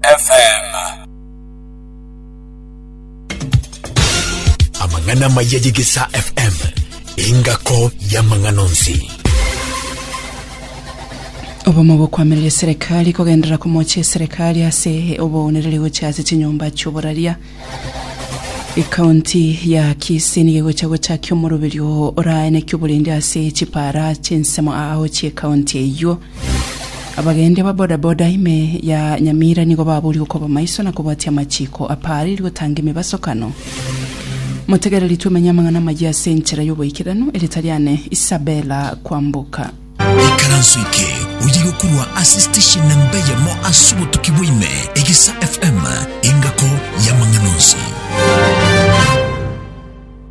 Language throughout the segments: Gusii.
FM. Amang'ana amaya y'Egesaa FM, engako y'amang'ana onsi. obomo bokwamiria eserekari kogenderera komocha eserekari ase oboonereri gocha ase chinyomba chioboraria ekaunti ya kisii nigo egocha gochakia omoroberio oraeneki oborendi ase chipara chinsemo ao chiekaunti eywo Abagendia ba bodaboda ime ya Nyamira nigo baboorire gokoba amaiso na kobwatia amachiiko aparire gotanga emebasokano. Motegereri twemenye amang'ana amayia ase enchera y'oboikeranu, erieta riane Isabella Kwamboka. Ikaranso eke oyiyi gokorwa ase steshen na mbeyemo ase obotuki bwa ime, Egesa FM, engako y'amang'ana onsi.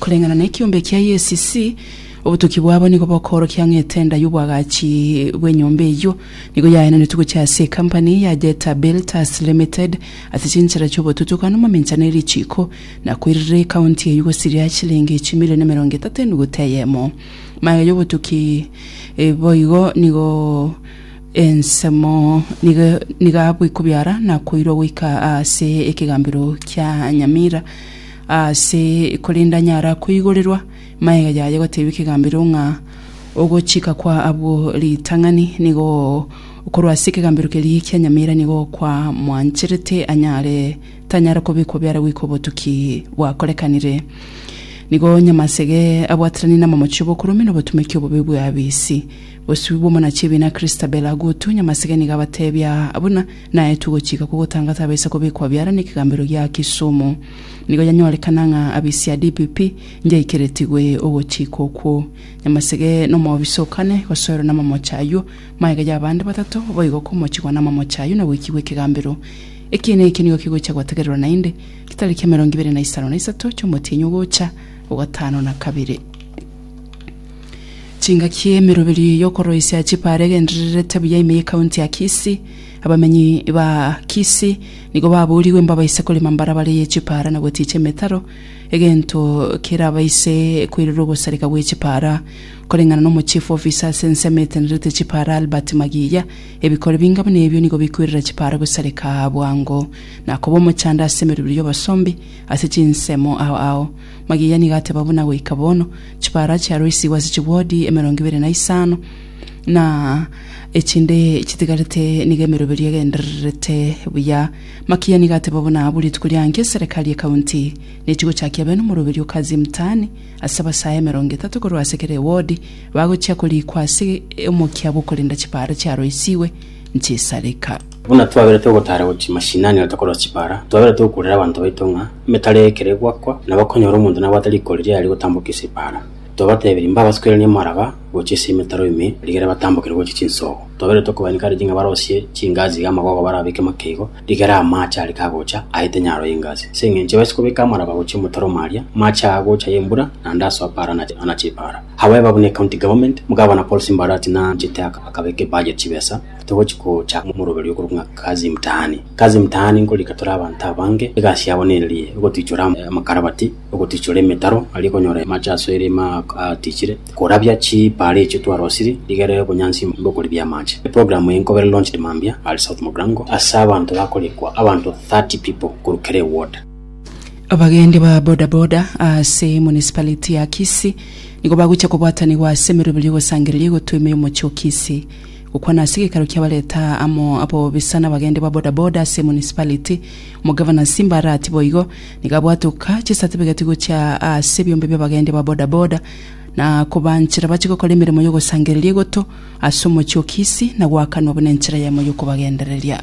Koreng'ana nekiombe kia UACC, obotuki bwabo nigo bokoorokia ng'a etenda y'obwagachi bw'enyomba eyio nigo yaenanetwe gochia ase ekampani ya Jetta Builders Limited ase chinchera chi'obotutuku nomominchano e richiiko na koirera ekaunti eyio gosiria chilingi chimilion emerongo etato enuguta eyemo. Magega y'obotuki boigo nigo ensemo nigo abekwa biara na koirwa goika ase ekegambero kia Nyamira. Aase, korende anyara koigorerwa magega yaye gotebia ekegambero ng'a ogochika kwa abwo ritang'ani nigo korwa ase ekegambero keria kia nyamera nigo kwa mwancherete anyare tanyara kobekwa biara goika obotuki bwakorekanire. Nigo nyamasege abwateranie namomochie bokoromia na obotumeki obobe bwa abisi. Bosio bw'omonachi ebiina Christabel agotu nyamasege nigo abatebia buna Naetwe gochika kogotanga tabaisa kobekwa biara nekegambero gia Kisumu. Nigo yanyorekana ng'a abisi a DPP njaikeretigwe ogochika okwo. Nyamasege nomoobisa o kane gosoerwa namamocha ayio, magega yabande batato boigo komochigwa namamocha ayio na goikigwa ekegambero. Ekiina eke nigo kigocha gwategererwa naende getariki emerongo ibere na isano na isato chi'omotienyi ogocha ogatano na kabere. Chingaki emeroberio y'okoroisia chipara egendererete buya ime y'ekaunti ya Kisii. Abamenyi ba Kisii nigo baboorigwe mbabaise korema mbarabara eye chipara na gotiicha emetaro, egento kerabaise koirera ogosareka gwe chipara. Koreng'ana na omochief officer ase ensemo etenerete chipara Albert Magiya, ebikori binga buna ebio nigo bikoirera chipara gosareka bwango na koba omochando ase emeroberio y'obosombi ase chinsemo ao ao. Mariya nigo ateba buna goika bono, chibara chiaroisigwe ase chibodi emerongo ibere na isano, na echinde chitigarete nigo emeroberio egendererete buya. Makia nigo ateba buna abo rituko ria nki eserekari ekaunti nechi gochakia bene omoroberio kazi mtaani ase abasae emerongo etato korwa ase kera ewodi bagochia korikwa ase omokia bw'okorenda chibara chiaroisigwe nchesareka. Buna twabire togotaara gochia mashinani na tokorwa chibara, twabire togokuurera abanto baito ng'a emetara eye ekero egoakwa, nabo konyora omonto nabwate riko riria riaria gotambokia ase epaara. Twabatebirie mbabasukeranie amaraba gochia ase emetaro ime rigere batambokere gochia chinsoogo. Twabire tokobaa encourage ng'a barosie chingasi iga amagogo barabeke makeigo rigere amaache are kagocha aete nyaro y'engasi. Ase eng'encho ebaise kobeka amaraba gochia omotaro omo aria, amaache aya agocha ay'embura naende asoa paara anache epaara. However, buna ecounty government, Gavana Paul Simba Arati nanchete akabeka ebudget chibesa, togochi gocha omoroberio okorokwa ng'a Kazi Mtaani. Kazi Mtaani nkorika tore abanto abange, egasi yabo nererie ogotichora amakarabati, ogotichora emetaro aria ekonyora amache ase erima atichire, korabia chipaara echio twarosiri rigere obonyansi mbokoribia amache. Eprogram eye nkobere launched mambia are South Mogrango ase abanto bakorikwa abanto 30 people korwa kera eward. Abagendi ba boda boda ase municipality ya Kisii nigo bagochia kobwatanigwa ase emeroberi y'ogosangereria egotwima y'omochie o Kisii. Gokwana ase gekaro kiabareta amo abo bisa nabagendi ba boda boda ase municipality, omogavana Simba Arati boigo nigo abwate goka chisatifigeti gochia ase ebiombe bi'abagendi ba boda boda na kobanchera bache gokora emeremo y'ogosangereria egoto ase omochie o Kisii na goakanwa buna enchera yaimo y'okobagendereria.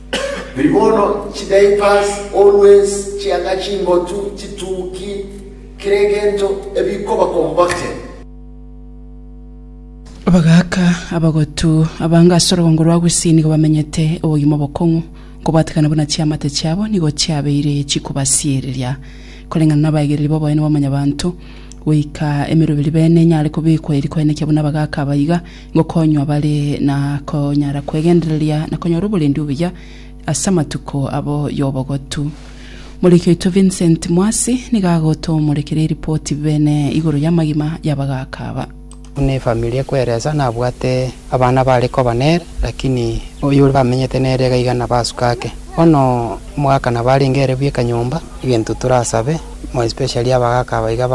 Riria bono chidiapers, always, chianga chimbotu, chituki, kera egento ebikoba composted. Bagaaka abagotu abange ase orogongo rwa Gusii nigo bamenyete obogima obokong'u, nkobwatekana buna chiamate chiabo nigo chiabeire chikobasiereria. Koreng'ana nabaegereri b'oboene bwa Mwanyabaanto, goika emeroberi bene enyare kobekwa eri koenekia buna abagaaka aba iga, Gokonywa bare na konyara kwegendereria na konyora oborendi obuya ase amatuko abo y'obogotu. Moriki oito Vincent Mwasi nigo agotomorekera eripoti bene igoro y'amagima y'abagaaka aba. Buna efamiri ekweresa, nabwate abana bare koba nere, lakini oyore bamenyete nere iga iga nabasuka ake. Bono omogaka nabo arenge ere bweka nyomba, egento torasabe more especially abagaaka aba iga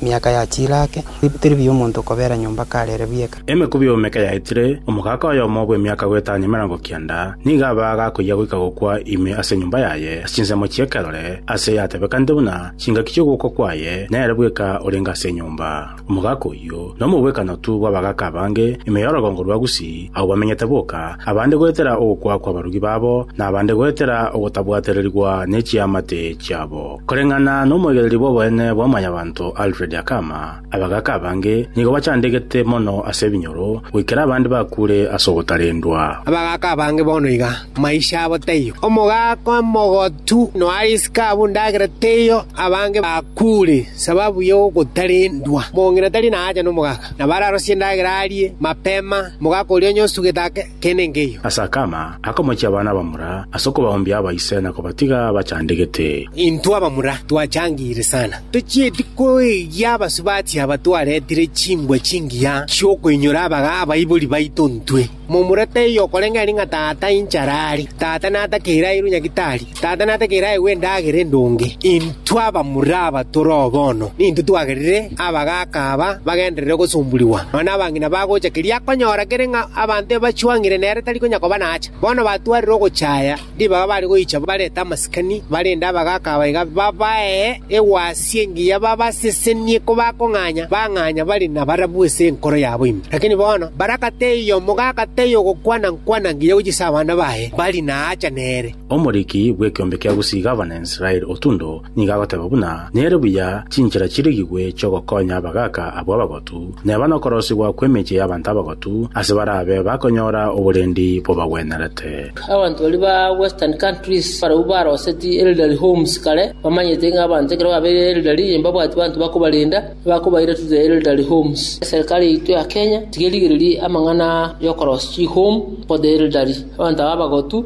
Miaka ya chiraake, tibitiri biya omonto kobeera nyomba karere bweka. Emekubi y'omeka yaetire, omogaaka oyomo bw'emiaka goetania emerongo kianda nigo aba agakoyia goika gokwa ime ase enyomba yaye ase chinsemo chi'ekerore, aase yatebekanete buna chingaki chi'ogokwa kwaye, nere bweka orenge ase enyomba. Omogaaka oyio nomobwekanotu bw'abagaaka abange ime y'orogongo rwa Gusii, agwo bamenyete boka, abande goetera ogokwa kw'abarugi babo, na abande goetera ogotabwatererigwa ne chiamate chiabo. Koreng'ana nomoigereri bw'oboene bwa mwanyabanto Alfred Akama, abagaaka abange nigo bachandegete mono ase ebinyoro goikera abande bakuure ase ogotarendwa. Abagaaka abange bono iga, maisha abo taiyo. Omogaaka omogotu noariisike abwo endagera teiyo, abange bakuure sababu y'ogotarendwa. Mong'ina tari naacha nomogaaka, nabo ararosie endagera arie mapema, mogaaka oria onye osugete ake. tenengeyio. Ase akama, akamochia abana abamura ase okobaoombia abaise na kobatiga bachandegete. Intwe abamura twachangeire sana. Tochieti koegia abasubati aba twaretire chimbwa chingiya chi'okoinyora abaga abaibori baito ntwe. Momura taiyo okoreng'eria ng'a tata inchara are, tata natakeire airwe nyagitari. Tata nategeere aegwe endagera endonge. Intwe abamura aba tore oo bono nintwe twagerire abagaaka aba bagenderere gosomborigwa, nonya abang'ina bagocha keria akonyora kere ng'a abanto ebachwang'ire nere tari konya koba naacha. Bono batwarire ogocha aya ribaga bare goicha barete amasikani, barende abagaaka aba iga babae egwasi engiya babasesenie kobakong'anya, bang'anya bare nabarabwo ase enkoro yabo ime. Lakini bono barakata eyomo gakata eyogokwana-nkwana ngiya gochia ase abana baye, bari naacha nere. Omoriki bw'ekeombe kia gosiiga Abanaisraeli otundo nigo agoteeba buna nere buya chinchera chirigigwe chi'ogokonya abagaaka abwo abagotu, neba nokorosigwa kw'emechie y'abanto abagotu ase barabe bakonyora oborendi bobagwenerete. Abanto baria ba Western Countries barabwo baroseti Elderly Homes kare, bamanyete ng'a abanto ekero babeire elderly mbabwati banto bakobarenda, ebakobaira to the Elderly Homes. Eserikari yaito ya Kenya tiga erigererie amang'ana y'okorosia chi-home for the elderly, abanto aba abagotu,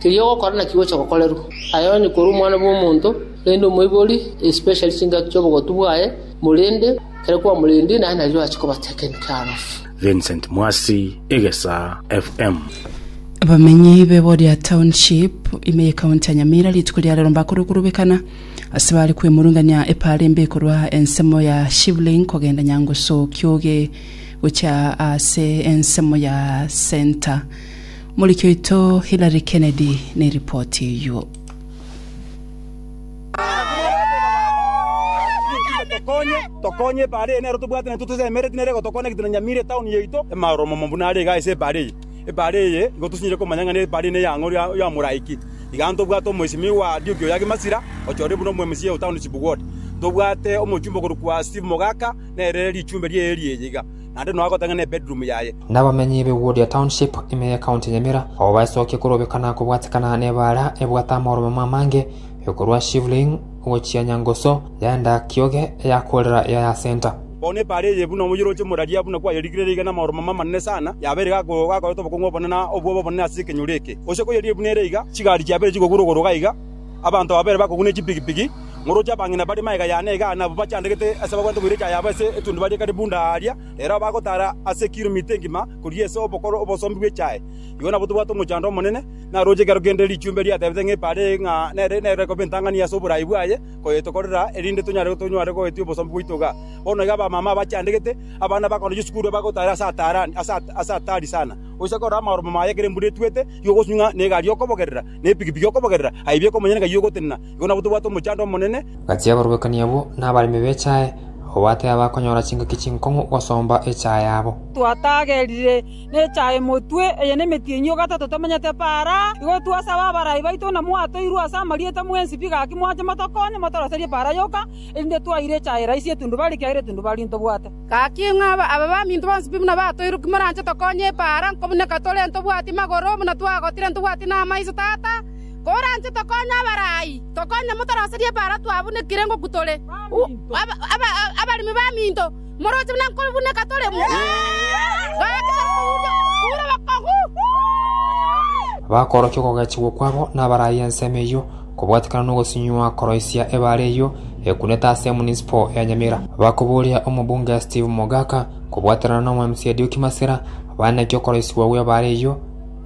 Keria ogokora naki gocha gokorerwa aye onye korwa Omwana bw'omonto, rende omoibori, especially chingaki chi'obogotu bwaye, morende ekero kwamorendie naye nario ache kobatekenik arafu. Vincent Mwasi, Egesaa FM. Abamenyi be Boria Township ime ye county ya Nyamira rituko ria rero mbakorire okorobekana ase bare kwemurungania epaara embe korwa ensemo ya Shivling kogenda Nyangusu Kioge gochia ase ensemo ya Centre. Omoriki oito Hillary Kennedy neripoti eyio. tokonye tokonye ebare eye nero tobwate naye totesemereti nere gotokona egento na nyamira etown yaito emaro momo buna are iga ase ebare eye ebare eye igo tosinyire komanya ng'a ebare eye neya ng'ori ya moraiki iga ntobwate omoisimio wa Adioki oyo agemasira ochorire buna omo mca o township ward tobwate omochumba okorokwa Steve Mogaka nere richumbe riaye riaye iga. naende nonya gotang'ana ebedroom yaye. Nabamenyi be Wodia Township ime ye County Nyamira abwo baesokia korobeka na kobwatikana nebaara ebwate amaoromemo amange ekorwa Shivling gochia Nyangoso yaenda Kioge eyakorera Yaya Centre. Bono ebaara eye buna omoyoroche moraria buna kwayerikire reiga namaoromemo amanene sana, yabeire gako gakoreta obokong'u obonene na obwobe obonene ase ekenyoro eke. Gose koyerie buna ere iga, chigari chiabeire chigokura ogoro iga iga, Abanto babere bakoguna echipigipigi, ngoroche abang'ina bare magega yane igaa na abwo bachandegete ase bagwete boira echa yabo ase etundi barie kare bunda aaria, ere abe agotaara ase ekiromita engima koria ase obokoro obosombi bw'echae. Igo nabwo tobwate omochando omonene, naroche ekero kende richumbe riatebete ng'a epaara eye ng'a nere nere ekoba entang'ani ase oboraai bwaye koyetokorera, erinde tonyare tonyware goetia obosombi bwaito igaa. Bono iga abamama abachandegete, abana bakoenda chisukuru bagotaara ase ataarani ase ase ataari sana. Oise korora amaromo maye ekero embura etwete, igo ogosubie ng'a negari okobogerera. nepikipiki okobogerera, aye bieka omonyene ng'ai ogotenena, igo nabo tobwate omochando omonene. Gati aborwekani abwo nabaremi b'echae, abwo batebakonyora chingaki chinkong'u gosomba echae yabo. Twatagerire nechae motwe, eye nemetienyi o gatato tomenyete para. Igo twasaba abarai baito ng'a mwatoirwe ase amarieta mwensi pi gaki mwanche motokonye motoroserie para yoka, erinde twaire echae raisi etundubarie, ekiagera etundubarie ntobwate. Gaki ng'a aba baminto bonsi pi buna batoirwe ki moranche tokonye epaara nko buna ekatore ntobwati magoro buna twagotire ntobwati namaiso, Tata, koranche tokonye abarai, tokonye motoroserie epaara twabunekire ngokw tore abaremi baminto, moroche buna nkobuneka tore gaki torikobura obokong'u. Bakorokia okogechigwa kwabo nabarai ensemo eyio. Kobwatekana nogosunywa koroisia ebaare eyio ekunete ase emunisipo ya Nyamira, bakoboria omobunge Steve Mogaka kobwaterana n'omwemc Edioki Masira bane naki okoroisigwa gw'ebaare eyio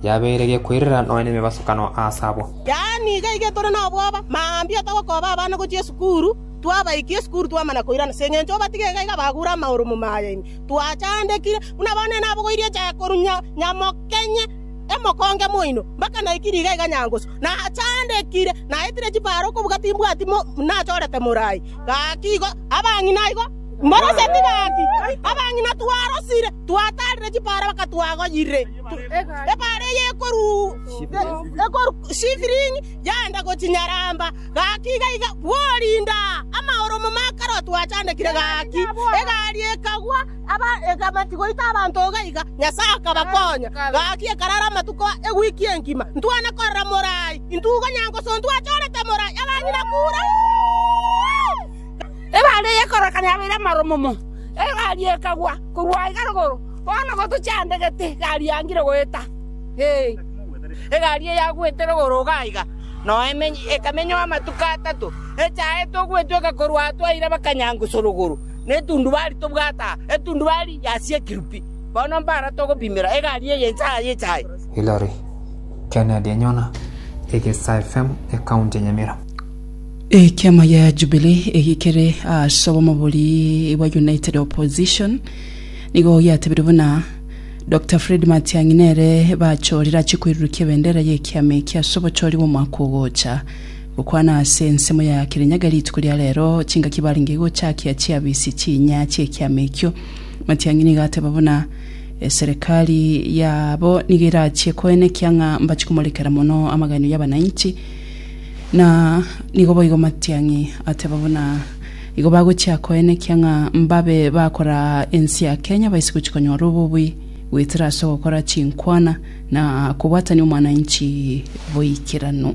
yabeire gekoirera nonya nemebasukano aase abwo. Yaani iga iga tore nobwoba, mambia otogokooba abana gochia esukuru, twabaikire esukuru twamana koirana, as'engencho obatiga iga iga bagure amaoro momaye ime. Twachandekire, buna bono enabogoirie echae korwa nyamokenye. Emokonge moino, mpaka naiki nigo aiga nyangusu, nachandekire, naetire chibare okobuga timbwati nachorete morai. Gaki igo abang'ina aigo mboroseti gaki, abang'ina twarosire, twatarire chibare mpaka twagoyire ebare eye ekorwa Shifring yaenda gochia Nyaramba. Gaki iga aiga bworinda amaoromo makarwa twachandekire gaki egari ekagwa. Abaekeraneti goita abanto iga iga, Nyasae akabakonya. Gaki ekarara amatuko ewiki engima ntwane korora morai, intwe igo nyangoso ntwachorete morai abanyene kure. Ebari eye ekorokana yabeire amaromomo, egari ekagwa korwa aiga rogoro, bono gotochia ande gete egari yangire goeta. Egari eye yagwete rogoro iga iga, nonya ekamenywa amatuko atato, echaete ogwetweka korwa atwaire bakanyangoso rogoro. netundubari tobwate aa, etundubari ya siekiri pi. Bono mbara togopimera egari eye inse aya yechae. Hillary Kennedy enyona egesae fm ecounty ya Nyamira. Ekiama gia Jubilee eki kere ase obomabori bwa United Opposition nigo giatebirie buna Dokita Fred Matiang'i nere bachorire achie koirurukia ebendera y'ekiama eki ase obochori bw'omwaka ogocha Gokwana ase ensemo ya Kirinyaga rituko ria rero, chingaki barenge gochakia chiabisi chinya chi'ekiama ekio. Matiang'i nigo ateba buna eserekari yabo nigo erachie koena ekiang'a mbachi komorekera mono amagaino y'abananchi na nigo boigo Matiang'i ateba buna igo bagochia koena ekiang'a mbabe bakora ense ya Kenya baise gochia konyora obobui goetera ase ogokora chinkwana na kobwatania omwananchi boikeranu.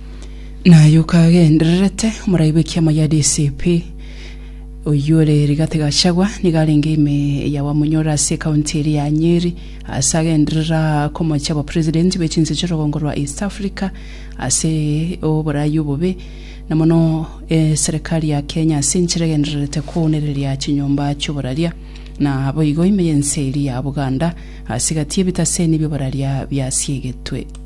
Naye okagendererete omoraibi w'ekiama gia DCP oyio ore Rigathi Gachagua nigo arenge ime ya bamonyore ase ekaunti eria ya Nyeri ase agenderera komochia abapresidenti be chinse chi'orogongo rwa East Africa ase oborai obobe na mono eserekari ya Kenya ase enchera egendererete kounereria chinyomba chi'oboraria na aboigo ime y'ense eria ya Buganda ase gati y'ebitaseni bi'oboraria biasiegetwe.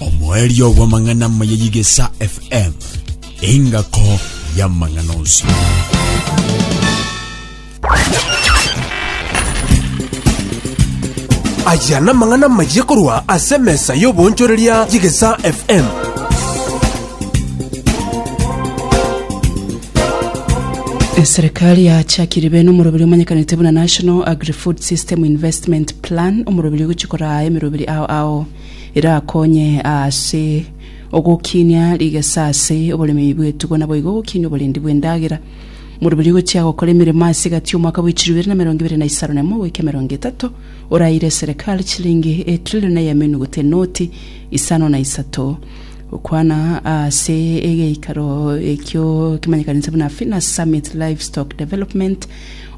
Omoerio bw'amang'ana amaya y'Igesa FM, engako y'amang'ana onsi. aya namang'ana maye korwa ase emesa y'obonchoreria y'igesa fm Serikali yachakire bene omoroberi omanyekanete buna National Agri-Food System Investment Plan omorobiri ogochia koraa emerobiri ao ao erakonye ase ogokinia rigesa ase oboremei bw'etugo naboigo ogokinia oborendi bw'endagera. Omorobiri ogochia gokora emeremo ase egati y'omwaka bwa echiru ibere na emerongo ibere na isano na emo goika emerongo etato oraire eserekari chilingi etrilion na eyamenuguta enoti isano na isato gokwana ase egeikaro ekio kemanyekanete buna Finas Summit Livestock Development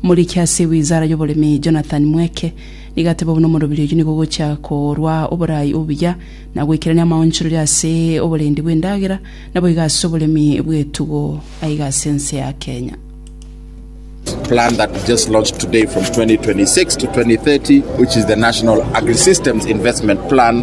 Omoriki ase wizara y'oboremi Jonathan Mweke nigo ateba buna omorobiri oyio nigo ogochia korwa oboraai obuya na goikerania amaonchorori ase oborendi bw'endagera naboigo ase oboremi bw'etugo aiga ase ense ya Kenya. plan that we just launched today from 2026 to 2030, which is the National Agri-Systems Investment Plan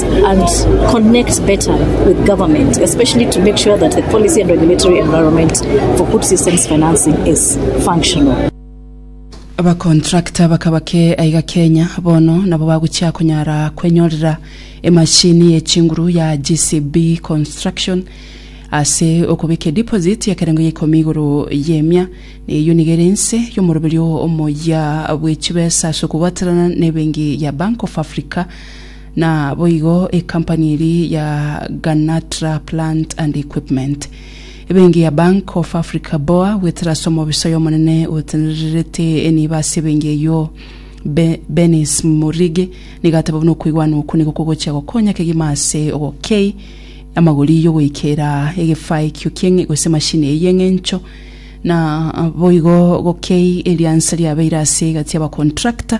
and connect better with government, especially to make sure that the policy and regulatory environment for food systems financing is functional. Abakontrakta bakaba ke aiga Kenya bono nabo bagochia konyara kwenyorera emashini ye chinguru ya GCB Construction ase okobeka ediposit y'ekerengo ya ikomi igoro y'emia na eyio nigo ere ense y'omoroberio omoyia bw'echibesa ase okobwaterana na ebenki ya Bank of Africa Naboigo ekampani eria ya Ganatra Plant and Equipment, ebenki ya Bank of Africa, boa, goetera ase omobiso y'Omonene otenererete enibo ase ebenki eyio, Benis Murigi, nigo ateba buna okoigwana okwo nigo kogochia gokonya kegima ase ogokei amagori y'ogoikera egefaa ekio ki'eng'encho gose emashini eyio y'eng'encho. Naboigo gokei eriansa riabeire ase egati y'abakontrakta.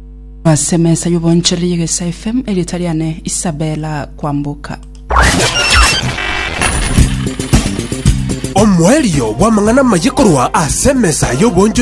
Ase emesa y'obonchoreri y'Egesae FM, erieta riane Isabella Kwamboka. Omoerio bw'amang'ana amaya korwa ase emesa y'obonchoreri